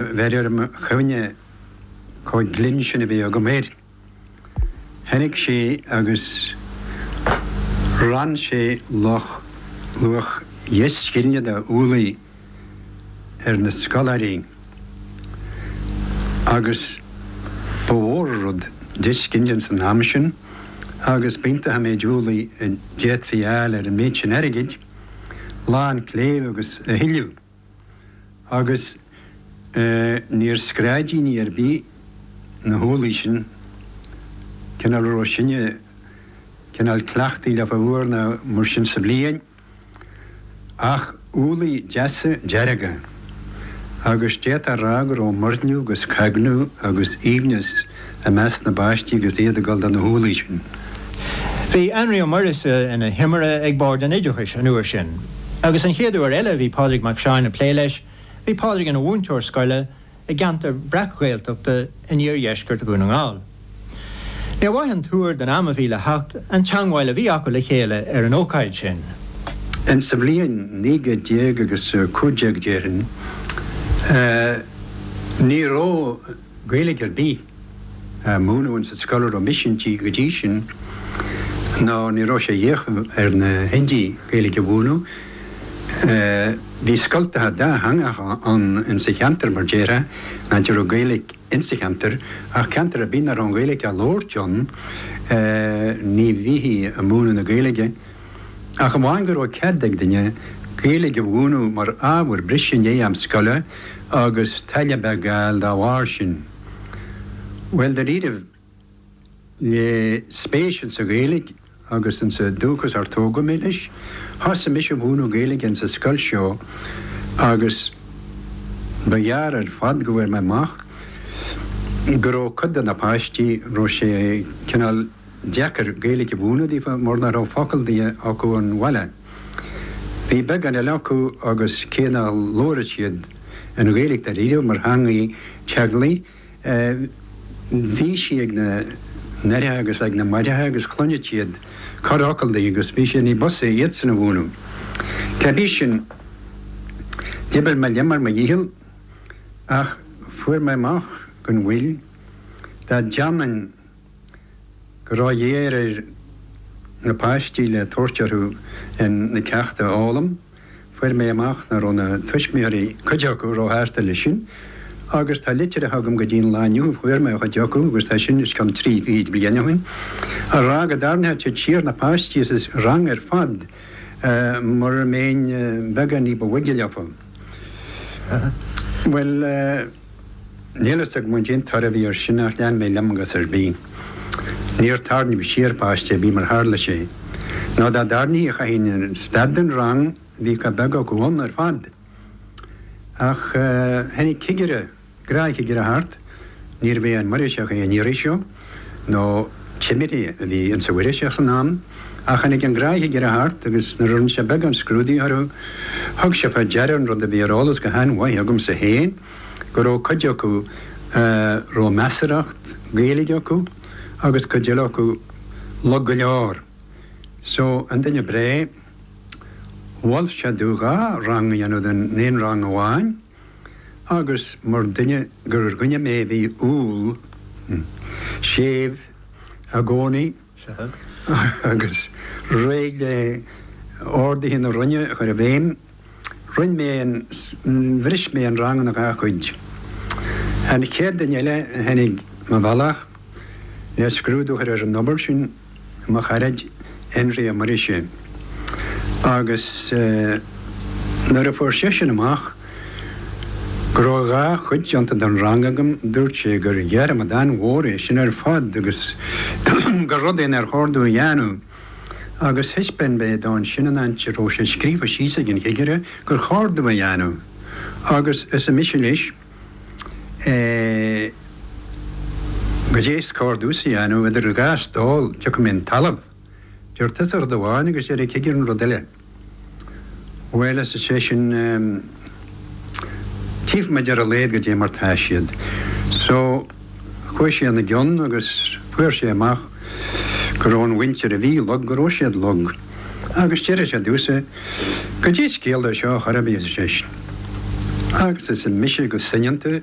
Bheirim orm cuimhne chomh glinn sin a bhí agam air. Tháinig sé agus rann sé luach dheich scillinge de úllaí ar na scoláirí agus ba mhór an rud deich scillinge san am sin agus b'iontach an méid úllaí a d'fhéadfaí a fháil ar an méid sin airgid, lán cléibh agus a thuilleadh. agus níor screabáin ar bith na húllaí sin, cineál a raibh sinne, cineál cleachtaí le fáil uair ná mar sin sa bhliain, ach úllaí deasa dearga, agus d'fhéadfá a rá go raibh muirniú agus cognadh agus aoibhneas, i measc na bpáistí agus iad ag dul do na húllaí sin. Bhí Énrí Ó Muirgheasa ina thimire ag Bord an Oideachais an uair sin agus an chéad uair eile a bhí Pádraig Mac Seáin ag plé leis bhí Pádraig ina mhúinteoir scoile i gceantar breac-Ghaeltachta in iardheisceart Dhún na nGall. Níor mhaith an tuar don am a bhí le theacht an teangmháil a bhí acu le chéile ar an ócáid sin. Ins an bhliain naoi gcéad déag agus a cúig déag déarfainn, ní raibh, Gaeilge ar bith á múineadh ins an scoil a raibh mise inti go dtí sin nó ní raibh sé a dhíth ar na húdair Gaeilge a mhúineadh. Bhí scoltacha dátheangacha ann ins an cheantar mar déarfá nuair a bhí Gaeilge ins an cheantar ach ceantar ar bith nach raibh an Ghaeilge á labhairt ann ní bhíthí ag múineadh na Gaeilge. ach amháin go raibh cead ag duine Gaeilge a mhúineadh mar ábhar breise i ndiaidh am scoile agus táille a bheith ag gabháil dá bharr sin. Bhuel dáiríribh le spéis insa Ghaeilge agus insa dúchas ar tógadh mé leis, thosaigh mise a mhúineadh Gaeilge insa scoil seo agus ba ghearr ar fad go bhfuair mé amach go raibh cuid de na páistí, raibh sé cineál, deacair Gaeilge a mhúineadh daofa mar nach raibh focal di acu ón bhaile. Bhí buíon eile acu agus cé nár labhair siad an Ghaeilge dáiríribh mar theangaidh teaghlaigh bhí sí ag na haithre agus ag na máithre agus chluineadh siad corrfhocal di agus bhí sé ní b'fhusa iadsan a mhúineadh. Cá bith sin d'oibir mé liom ar mo dhícheall ach fuair mé amach gan mhoill dá ndéanfainn go róghéar ar na páistí le tabhairt orthu in na ceachta a fhoghlaim, fuair mé amach nach raibh na tuismitheoirí, cuid acu, ró shásta leis sin agus tá litreacha agam go dtí'n lá inniu, fuair mé ó chuid acu agus tá sin os cionn trí fichid bliain ó shin, a rá go dtarraingeodh siad siar na páistí as an rang ar fad mura mbéinn beagán ní ba bhoige leofa. Bhuel. Níl fhios agam goidé an toradh a bhí ar sin ach lean mé liom i gcás ar bith. Níor tarraingeadh siar páiste ar bith mar a tharla sé. Nó dá dtarraingíodh chaithfinn stad den rang bhí chomh beag acu ann ar fad. Ach tháinig cigire, gnáthchigire thart, níorbh é an Muirgheasach é an iarraidh seo, nó timire a bhí ins an Mhuirgheasach san am, ach tháinig an gnáthchigire thart, agus nuair a rinne sé beagán scrúdaithe orthu, thug sé fá deara an rud a bhí ar eolas go han-mhaith agamsa féin, go rabh cuid acu a rabh measarthacht Gaeilge acu, agus cuid eile acu lag go leor. So, an duine breá, mhol sé domh dhá rang a dhéanamh den aon rang amháin, Agus mar duine gur dhuine mé a bhí umhal, séimh i gcónaí agus réidh le orduithe na Roinne a chur i bhfeidhm, roinn mé an, bhris mé an rang ina dhá chuid. An chéad duine eile a tháinig mo bhealach le scrúdú a chur ar an obair sin, mo charaid Énrí Ó Muirgheasa, agus nuair a fuair seisean amach go raibh dhá chuid déanta den rang agam, dúirt sé gur dhearmad an-mhór é sin ar fad agus gur rud é nár chóir domh a dhéanamh. Agus thaispeáin mé dó ansin an áit a raibh sé scríofa síos ag an chigire gur chóir domh a dhéanamh, agus arsa mise leis, Eh, goidé is cóir domhsa a dhéanamh idir an dá stól, tiocfaidh mé chun talaimh. Deir tusa rud amháin agus deir an cigire rud eile. Bhuel, arsa seisean, eh, tchífimid ar a laghad goidé mar tá siad. So, chuaigh sé ina gceann agus fuair sé amach go raibh an mhuintir a bhí lag go raibh siad lag. agus deir sé domhsa goidé is ciall dó seo a chur i bhfios, ar seisean. Agus arsa mise go soineanta